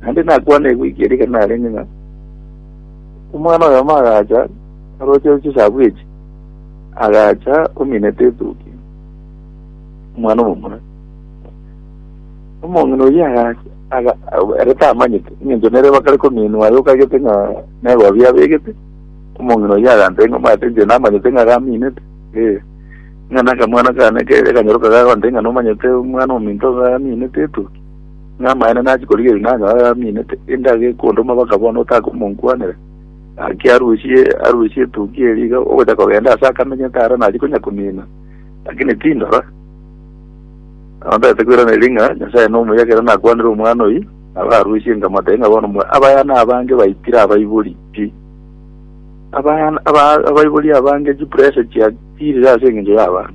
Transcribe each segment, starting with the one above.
Naende nakwane egwiki eria ekero narenge ng'a omwana oyomo agacha aroche chisagu echi, agacha ominete etuki omwana omomura. Omong'ina oyio agacha aga- aga- ere tamanyete eng'encho nere bakare kominwa aye okagete ng'a negobi abegete, omong'ina oyio agantebia ng'a omanyete inche namanyete ng'a gaminete eh, ng'a nakamwana kane kere kanyoroka gagontebia ng'a nomanyete omwana ominto iga aminete etuki. Namaene nachie korigia oyio nanyore araminete, inde agekwe onde omabaka bono otake omonkwanera. Gaki arusie arusie etugi eria iga ogocha kogenda ase akamenyete aro naria konya komina, lakini tindora. Nabo ntagete koiraneria ng'a Nyasae nomuya ekero nakwanire omwana oyio, nabo arusie nkamotebia ng'a bono mwe abayana abange baitire abaibori pi. Abayana aba abaibori abange chipressure chiatirire ase engencho y'abanto.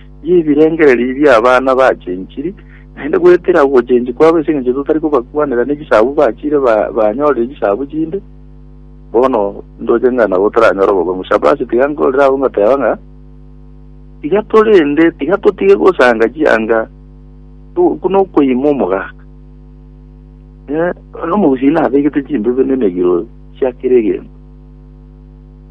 y'ebirengererio bi'abana bachenchiri, naende goetera ogochenchia kwabo ase engencho totari kobakwanera nechisabu bachiire banyorire chisabu chinde. Bono ndoche ng'a nabo toranyore obogima. Shapasi tiga nkorere abwo ngoteba ng'a tiga torende tiga totige gosanga chianga buna okoima omogaka eh, nomogusii nabegete chimbe buna emegiro chia kera egento.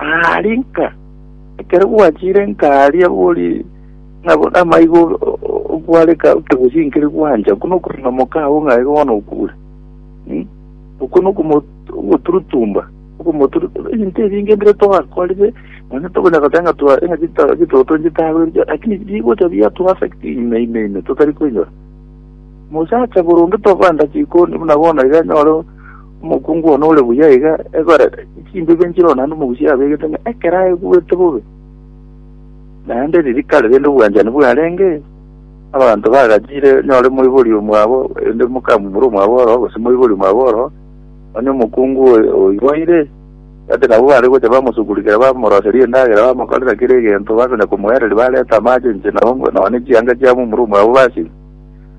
Aa rinka ekero gwachire nkaaria bori ng'abo amaigo okwareka otogochinkiri gwancha okwo nokorina omokao ng'a igo bono okure Hmm? okwo nokomoturutumba okomoturutumba ebinto ebinge mbire twakorire nonya tokonya goteba ng'a twa- ng'a chito- chitoto nchitagweriche lakini bigocha biatuaffect ime ime ime totari koinyora mosacha boronge tobanda chikoni buna bono iga nyore Omokungu one ore buya iga ekorete, chimbibe nchire oo naende omogusi abegete ng'a ekero aigwete bobe, naende ririkari rende obwanchani bwarenge, abanto bagachire nyore moibori omwabo, erinde mokamumura omwabo ororo, gose moibori omwabo ororo, onye omokungu oyo oiboire, ati nabo bare gocha bamosugurikera bamoroseria endagera bamokorera kera egento, bakonya komoereria bareta amache inche nabo nonye chianga chiamumura omwabo basime.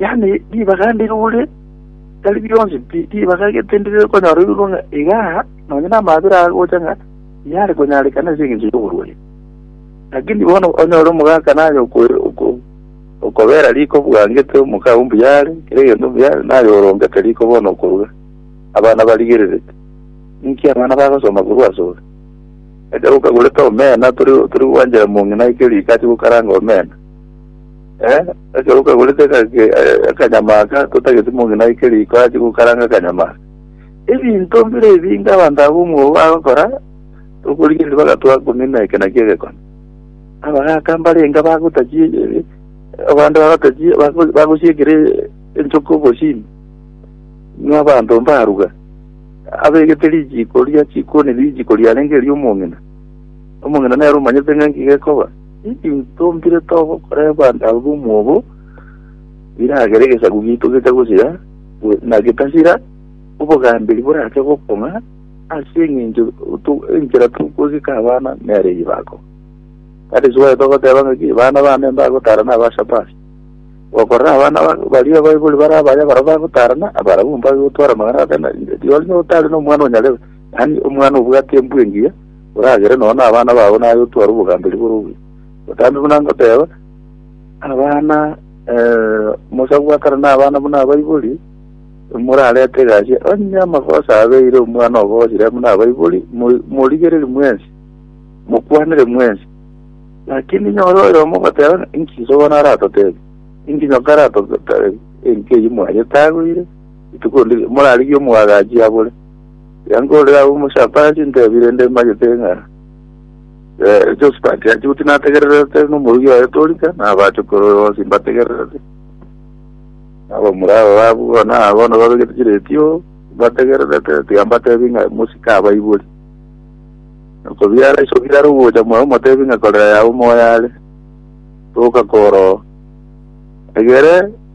Yaani, ribaga inde igure, tari bionsi pi, ribaga egete inde rire konyora oirwa ng'a iga aa, nonye namabera agocha ng'a yare konyarekana ase engencho y'oborwaire. Lakini bono onyore omogaka naye okwe- oko- okobera riko bwangete omokao mbuya are, kera egento mbuya are, naye orongete riko bono okoruga, abana barigererete. Ninki abana bagosoma korwa asore? Ekero okagorete omena, tori tori gwanchera mong'ina eke riko ache gokaranga omena. Eh, ekero okagorete akage- eh, akanyama aka totageti mong'ina aike riko ache gokaranga akanyama aka. Ebinto mbire ebinge abanto aba omwoyo bagokora, tokorigereria bagatoa komina eke nakio egekone. Abagaka mbarenge bagotachie eh, abande bagotachie bago- bagosiekera eh, enchoka obosimi. Ng'a abanto mbaruga. Abegete richiiko ria chikoni richiiko riarenge eria omong'ina. Omong'ina nere omanyete ng'a nki gekoba. Intwe tombire togokora ebanda ao b'omwobo, biragere egesaku giaito gecha gosira, go- na getasira, obogamberi borache gokong'a, ase eng'encho to- enchera togwegeka abana nere ribako. Kare Israel togoteba ng'aki, Bana bane mbagotara na aba Shabasi. Gokorora abana ba- baria abaibori bare abaya barabwo bagotarana, abarabwo mbagotwara amang'ana atari na riori, notari nomwana onyarebe, yaani omwana obwate embwa engiya, oragere nonya nabana bao naye otware obogamberi bore obuya. Botambe buna ngoteeba, abana eh, omosaku bwa kare nabana buna abaibori, morarete egasi, onye amagoso abeire omwana obosire buna abaibori, mo- morigereri mwensi, mokwanere mwensi. Lakini nyore oyo omogoteeba, inki sogona aratotebi? Inki nyoka aratotebi? Enki eyi mwanyete agoire? Ituko ndi morarigie omwagachi abore. Yankorire agwo omochapaachi ntebi rende mbagete ng'a eh, Josphat achibuti nategererete nomorugi oye torika na abachokoro bonsi mbategererete abamura aba babu bona bono babegete chiretio mbategererete tiga mbatebi ng'a mosika abaibori okobiara iso biraro gocha moyo omotebi ng'a korera yago moyo are toka koro egere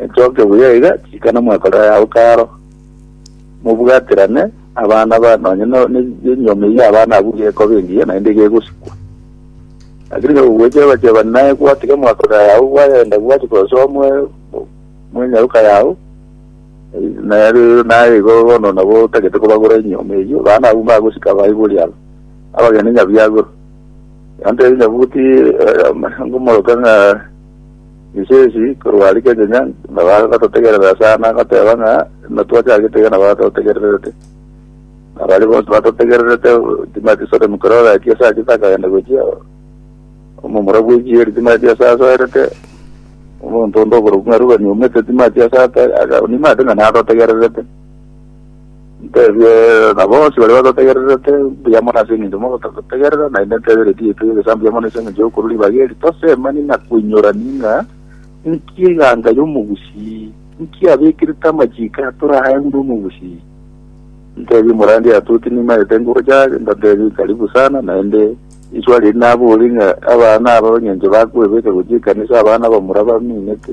Etoke buya iga, tikana mwekore ayao karo, mobwaterane abana ba nonye no- ne- nenyiomi ya abana abwo gekoba engiya naende gegosikwa. Lakini nigo gogwechebachebani naye gwatiga mwekore ayao gwayenda gwachi kosoa mwe- mwenyaroka yao, nere naye igo bono nabo otagete kobagora enyioma eyio, abana abwo mbagosika baibori aba, abagende nyabiagorwa. Gantebie nyabuti eh, ama- ngomoroka ng'a Ensesi korwa aria kechenya nabagototegerera sana goteba ng'a natwachagete iga nabo batotegererete. Na baria bonsi batotegererete timati Sodomu kerore aki ase achete akagenda gochia omomura bw'ekieri eri timati ase asoerete omonto onde oborokigwa ng'a rubani omete timati ase ata aga nimate ng'a natotegererete. Ntebie na bonsi baria batotegererete, Mbuya mono ase engencho mogototegerera, naende ntebere Tieto y'Egesaku mbuya mono ase engencho y'okorua ribaga eri. Tosemani na koinyorani ng'a inki eganga y'omogusii, inki abekerete amachiko atore aa enguru omogusii. Ntebie Murandia Atuoti nimaete nguru yare, ndatebie Karibu sana, naende iswa riria naborie ng'a abana aba engencho bakoebeka gochia ekanisa abana abamura baminete.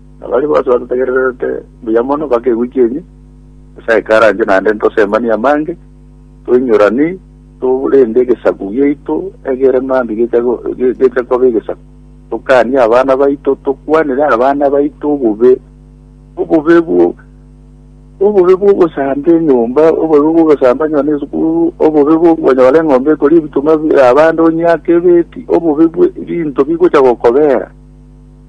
Na baria bonsi batotegererete buya mono mpaka egwe chienyi, Nyasae ikaranche naende ntosemanie amange, toinyorani, torende egesaku giaito egere mambia gecha go- ge- gecha koba egesaku. Tokanie abana baito, tokwanere abana baito obobe, obobe bwo obobe bw'ogosamba enyomba, obobe bw'ogosamba nonya na esukuru, obobe bw'okonyora eng'ombe ekoria ebituma bia abande onyiake ebeti, obobe bwe ebinto bigocha gokobera.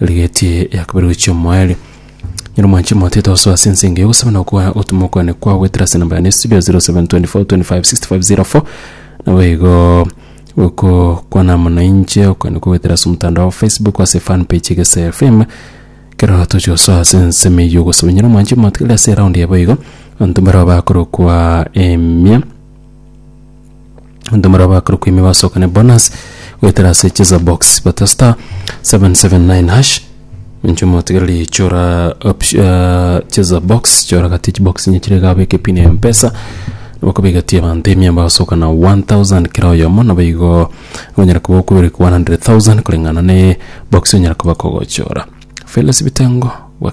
rigetie Yakobere gochia omoerio. Nyiri mwanchi mote tosoa ase ense engiya ogosaba na okoa otome okwane kwa gwetera ase namba yane ya studio 0724256504 nabo igo oko kwana amo na inche okwane kwa gwetera ase omotandao wa Facebook ase fan page Egesae FM kero tochi gosoa ase ensemo eyio ogosaba nyiri mwanchi mote kere ase eround yabo igo abanto mbarao bakorokwa emia abanto mbaria bakorokwa ime basokane bonus goetera ase cheza box bata star 779 hash inche omotigereri chora opti- eh, cheza box chora gati chibox inye chire iga abeke pin ya mpesa bakobegatia abanto ime basokana 1000 kera oyomo nabo igo onyara koba okoberekwa 100000 koreng'ana ne box onyara koba kogochora felis bitengo gwa-